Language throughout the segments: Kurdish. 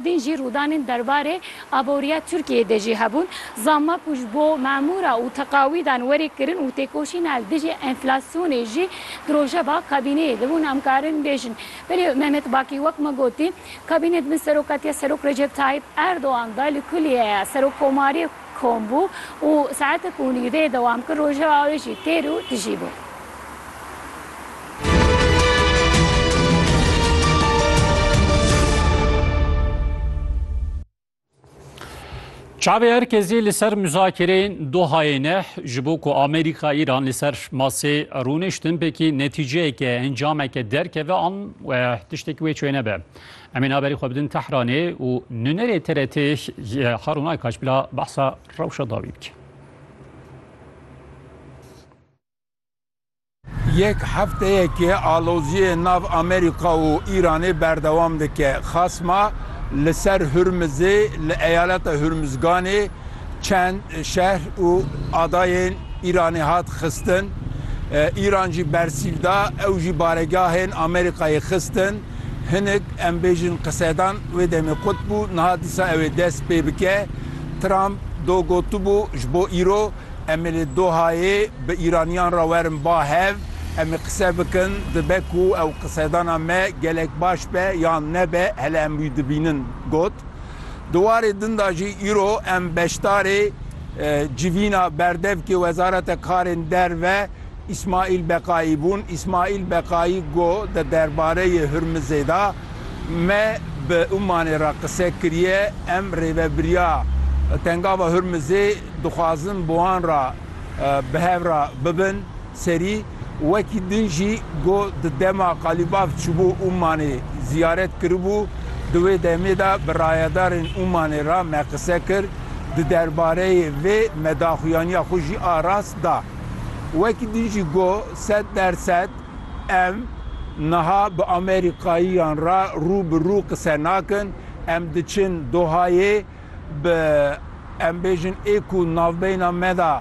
Din jî rûdanên derbarê aboriya Tirkiyeyê de jî hebûn. Zamak û ji bo memûra û teqawîdan werê kirin û têkoşîna li dijî enflasyonê jî di rojeva kabîneyê de bûn. Em karin bêjin. Belê Mehmet Bakî wek me gotî, kabîne di bin serokatiya Serok Recep Tayyîp Erdogan de li kulîyeya Serokkomarê, Kom bû û saetek û nîv dê dewam kir, rojeva wê jî têr û tijî bû. Çavê her kesî li ser muzakereyên Dohayê ne ji bo ku Amerîka Îran li ser masê rûniştin pekî netîceyeke encameke derkeve an tiştekî wê çêne be. Em ê naberî xwe bidin Tehranê û nûnerê TRT'ê ji Harûn Aykaç bila behsa rewşa dawî bike. Yek hefteyekê aloziyê nav Amerîka û Îranê berdewam dike. Xasma li ser Hurmizê li eyaleta Hurmizganê çend şehr û adayên Îranê hat xistin. Îran jî bersîv da, ew jî baregahên Amerîkayê xistin. Hinek em bêjin qisedan wê demê qut bû, niha dîsa ew ê dest pê bike. Trump do gotibû, ji bo îro em ê li Dohayê bi Îraniyan re werin ba hev, em ê qise bikin, dibe ku ew qisedana me gelek baş be yan nebe hele em wî dibînin, got. Di warê din de jî îro em beşdarê civîna berdevkê Wezareta Karên Derve, Îsmaîl Beqayî bûn. Îsmaîl Beqayî got, Di derbareyê Hurmizê de me bi Umanê re qise kiriye. Em rêvebiriya Tengava Hurmizê dixwazin bi wan re bi hev re bibin serî. Wekî din jî got, Di dema Qalîbaf çûbû Umanê ziyaret kiribû. Di wê demê de bi rayedarên Umanê re me qise kir. Di derbareyê vê me daxuyaniya xwe jî a rast da. Wekî din jî got, sed der sed em niha bi Amerîkayiyan re rû bi rû qise nakin, em diçin Dohayê bi em bêjin ê ku navbeyna me de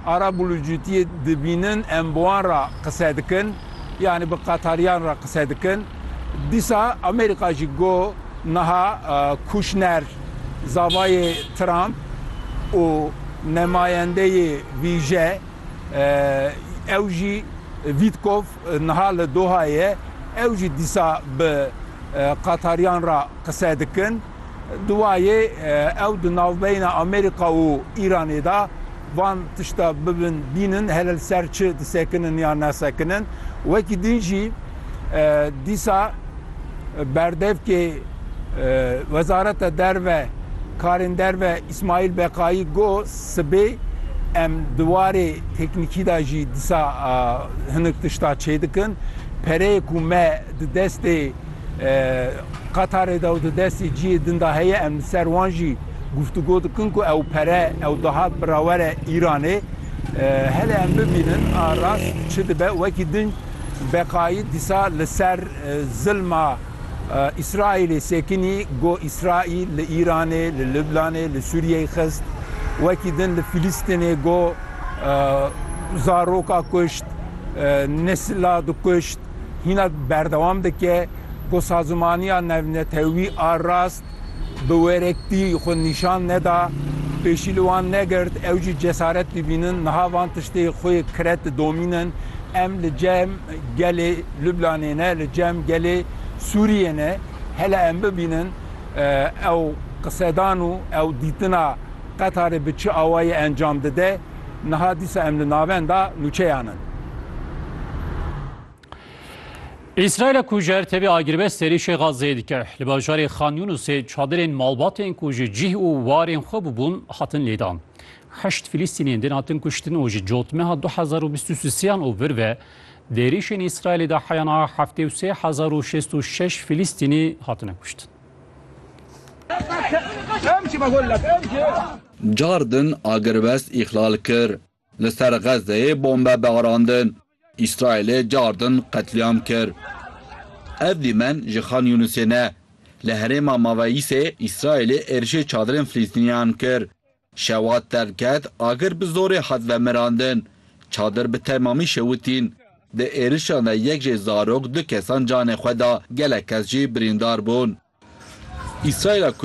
arabûlûcûtiyê dibînin em bi wan re qise dikin, yanî bi Qetariyan re qise dikin. Dîsa Amerîka jî got, niha Kûşner, Zavayê Trump û nemayendeyê vîje ew jî Wîtkov niha li Dohayê ew jî dîsa bi qatariyan re qise dikin. Duwayê ew di navbeyna Amerîka û Îranê de van tişta bibin bînin hele li ser çi disekinin yan nasekinin. Wekî din jî. Dîsa berdevkê Wezareta Derve Karên Derve Îsmaîl Beqayî got, Sibê em di warê teknîkî de jî dîsa hinek tişta çêdikin. Pereyê ku me di destê Qatarê de û di destê cihê din de heye em li ser wan jî guftûgo dikin ku ew pere ew dahat birawere Îranê. Hele em bibînin a rast çi dibe wekî din. Beqayî dîsa li ser zilma Îsraîlê sekinî got Îsraîl li Îranê, li Lublanê, li Sûriyeyê xist. Wekî din li Filîstînê got zaroka kuşt, nesila dikuşt. Hîna berdewam dike got sazimaniya navnetewî a rast Bi werektî xwe nîşan neda, pêşî li wan negirt, ew jî cesaret bibînin, niha van tiştê xwe kire ti domînin, Em li cem gelê Lublanê ne, li cem gelê Sûriyê ne, hele em bibînin ew qisedan û ew dîtina Qetarê bi çi awayî encam dide, niha dîsa em li navenda nûçeyan in. Îsraîla ku ji her tevî agirbest êrîşê Xazzeyê dike, li bajarê Xan Yûnusê çadirên malbatên ku ji cih û warên xwe bûbûn hatin lêdan. Heşt Filîstîniyên din hatin kuştin û ji cotmeha du hezar û bîst û siyan û vir ve di êrîşên Îsraîlê de heya niha heftê û sê hezar û şêst û şeş Filîstînî hatine kuştin. Car din agirbest îxlal kir. Li ser Xezzeyê bombe barandin. Îsraîlê cardin qetlîam kir. Ev dîmen ji Xan Yûnisê ne. Li herêma Maveyîsê Îsraîlê êrişê çadirên Filîstîniyan kir. Şewa derket, agir bi zorê hat vemirandin. Çadir bi temamî şewitîn. Di êrişan de yek jê zarok du kesan canê xwe da, gelek kes jî birîndar bûn. Îsraîla ku